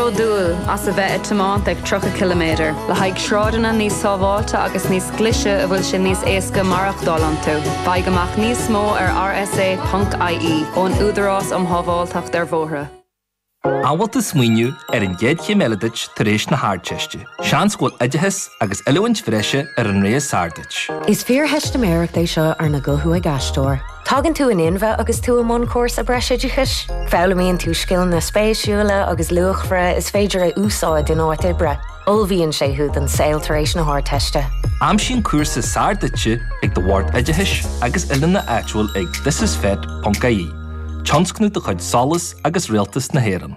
bródúil as a bheith ag tiomáint ag 30 ciliméadar le haghaidh sráideanna níos sábháilte agus níos glaise a bhfuil sé níos éasca maireachtáil iontu. Faigh amach níos mó ar rsa.ie ón Údarás um Shábháilteacht ar Bhóithre. An bhfuil tú ag smaoineamh ar an gcéad chéim eile duit tar éis na hArdteiste. Seans go bhfuil oideachas agus oiliúint bhreise ar an rogha is fearr duit. Is fíortheistiméireacht é seo arna guthú ag aisteoir. Tagann tú in inmhe agus tú i mbun cúrsa breisoideachais. Foghlaimíonn tú scileanna spéisiúla agus luachmhara is féidir a úsáid in áit oibre. Ullmhaíonn sé thú don saol tar éis na hArdteiste. Aimsigh an cúrsa is fearr duitse ag do Bhord Oideachais agus Oiliúna áitiúil ag thisisfet.ie, tionscnamh de chuid SOLAS agus Rialtas na hÉireann.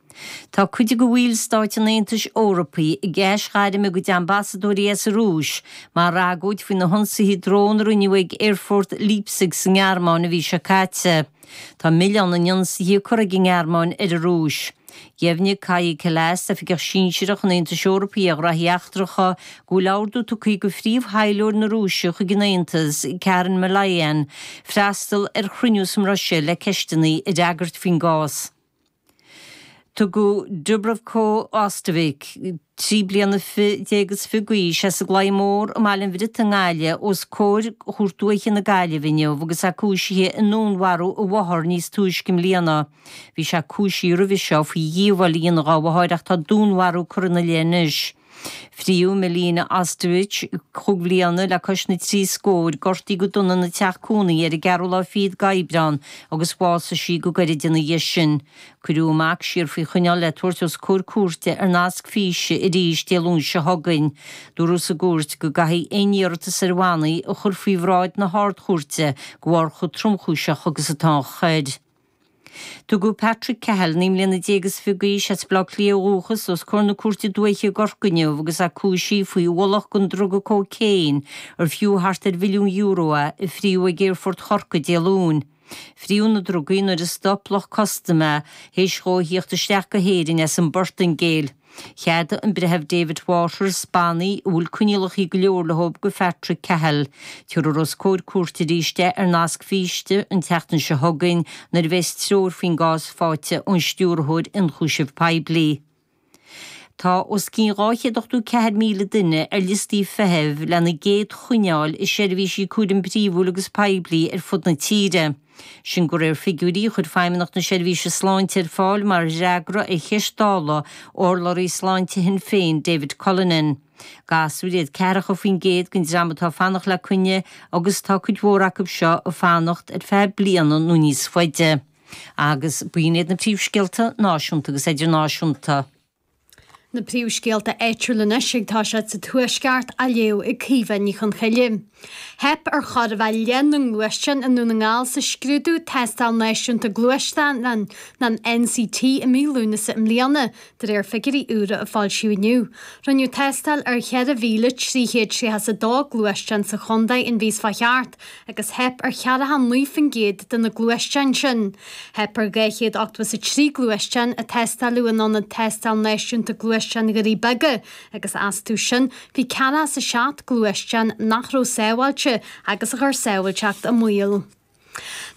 Tá cuid de bhallstáit an Aontais Eorpaigh ag aisghairm a gcuid ambasadóirí as an Rúis mar agóid faoi na hionsaithe drón a rinneadh ag Aerfort Leipzig sa nGearmáin an mhí seo caite. Tá milleán na n-ionsaithe curtha ag an nGearmáin ar an Rúis. Dheimhnigh Kaja Kallas, oifigeach sinsearach an Aontais Eorpaigh ar ghraithí eachtracha, go bhfuil ordú tugtha aici do phríomh-thaidhleoir na Rúise chuig an Aontas, Karen Malayan, freastal ar chruinniú sa mBruiséil le ceisteanna a fhreagairt faoin gcás. Tugadh Dubravko Ostojic, trí bliana déag is fiche d'aois, as an gClaí Mór i mBaile an Bhriotaigh i nGaillimh os comhair Chúirt Dúiche na Gaillimhe inniu agus é cúisithe i ndúnmharú a mháthar níos túisce i mbliana. Bhí sé cúisithe roimhe seo faoi dhíobháil a dhéanamh dá mháthair ach tá dúnmharú curtha ina leith anois. Fríodh Milena Ostojic cúig bhliana le cois na trí scóir, gortaí go dona ina teach cónaí ar an gceathrú lá fichead d'Aibreán agus bhásaigh sí go gairid ina dhiaidh sin. Cuireadh a mac siar faoi choinneáil le tabhairt os comhair cúirte ar nasc físe arís Dé Luain seo chugainn. Dúradh sa gcúirt go gcaithfí aon iarratas ar bhannaí a chur faoi bhráid na hArd-Chúirte de bharr chomh tromchúiseach agus atá an choir. Tugadh Patrick Cahill, naoi mbliana déag is fiche d'aois, as Baile Átha Cliath ó dhúchas os comhair na Cúirte Dúiche i gCorcaigh inniu agus é cúisithe faoi ualach den druga cócaon ar fiú thart ar mhilliún euro a fríodh ag Aerfort Chorcaí Dé Luain. Fríodh na drugaí nuair a stop lucht custaim é théis dhó a theacht isteach go hÉirinn as an bPortaingéil. Cheadaigh an Breitheamh David Waters bannaí a bhfuil coinníollacha go leor leo do Phatrick Cahill, tabharfar os comhair cúirte arís é ar nasc físe an tseachtain seo chugainn nuair a bheas treoir faoin gcás faighte ón Stiúrthóir Ionchúiseamh Poiblí. Tá os cionn 284,000 duine ar liostaí feithimh lena gcéad choinne a fháil i seirbhísí cúraim príomhúil agus poiblí ar fud na tíre. sin de réir figiúirí a chuir Feidhmeannacht na Seirbhíse Sláinte ar fáil mar fhreagra ar cheist Dála urlabhraí sláinte Shinn Féin David Cullinane. Gasúir iad 40% den dream atá fanacht le coinne agus tá cuid mhór acu seo ag fanacht ar feadh bliana nó níos faide agus b'in iad na príomhscéalta náisiúnta agus idirnáisiúnta. Na príomhscéalta áitiúla anois ag tosú sa Tuaisceart á léamh ag Caoimhe Ní Choncoille. Theip ar chóir a bheith leath na ngluaisteán i nDún na nGall sa scrúdú Tástáil Náisiúnta Gluaisteán an NCT i mí Lúnasa i mbliana, de réir figiúirí úra a foilsíodh inniu. Rinneadh tástáil ar 4,332 gluaisteán sa chontae an mhí seo a chuaigh thart. agus theip ar cheathracha a naoi faoin gcéad de na gluaisteáin sin. Theip ar dhá chéad ochtó is a trí gluaisteán a tástáileadh in ionad tástáil náisiúnta gluaisteán Dhoirí Beaga agus astu sin bhí ceathracha is a seacht gluaisteán nach raibh sábháilte agus a chuir sábháilteacht i mbaol.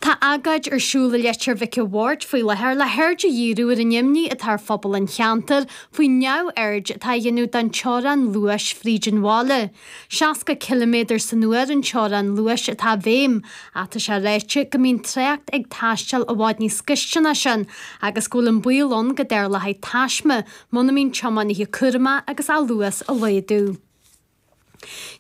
Tá agóid ar siúl i Leitir Mhic a' Bhaird faoi láthair le haird a dhíriú ar an imní atá ar phobal an cheantair faoin neamhaird atá á dhéanamh don teorann luais fríd an bhaile. 60 ciliméadar san uair an teorann luais atá i bhfeidhm, ach tá sé ráite go mbíonn trácht ag taisteal i bhfad níos gaiste ná sin agus go bhfuil an baol ann go dtarlóchaidh taisme muna mbíonn tiománaithe cúramach agus an luas a laghdú.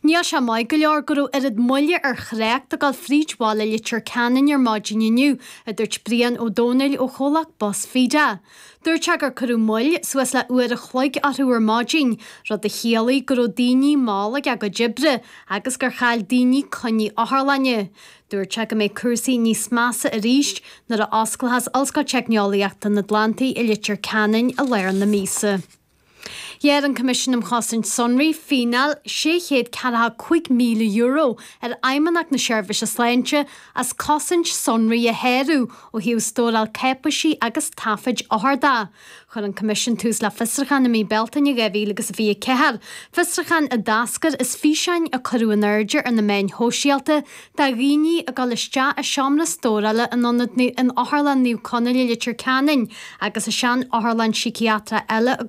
Níl sé maith go leor go raibh oiread moille ar thrácht ag dul fríd bhaile Leitir Ceanainn ar maidin inniu, a dúirt Brian Ó Domhnaill ó chomhlacht Bus Feda. Dúirt sé gur cuireadh moill suas le uair a chloig orthu ar maidin, rud a chiallaigh go raibh daoine mall ag a gcuid oibre agus gur chaill daoine coinní otharlainne. Dúirt sé go mbeidh cúrsaí níos measa arís nuair a osclaíochas Ollscoil Teicneolaíochta an Atlantaigh i Leitir Ceanainn i lár na míosa. Ghearr an Coimisiún um Chosaint Sonraí fíneáil sé chéad ceathracha cúig míle euro ar Fheidhmeannacht na Seirbhíse Sláinte as cosaint sonraí a sháru ó thaobh stóráil cáipéisí agus taifid othar de. Chuir an Coimisiún tús le fiosruchán i mí Bealtaine dhá mhíle agus a fiche a ceathair, fiosruchán a d'eascair as físeáin a cuireadh in airde ar na meáin shóisialta de dhaoine ag dul isteach i seomra stórála in ionad na in Otharlann Naomh Conaill i Leitir Ceanainn agus i seanotharlann síciatrach eile i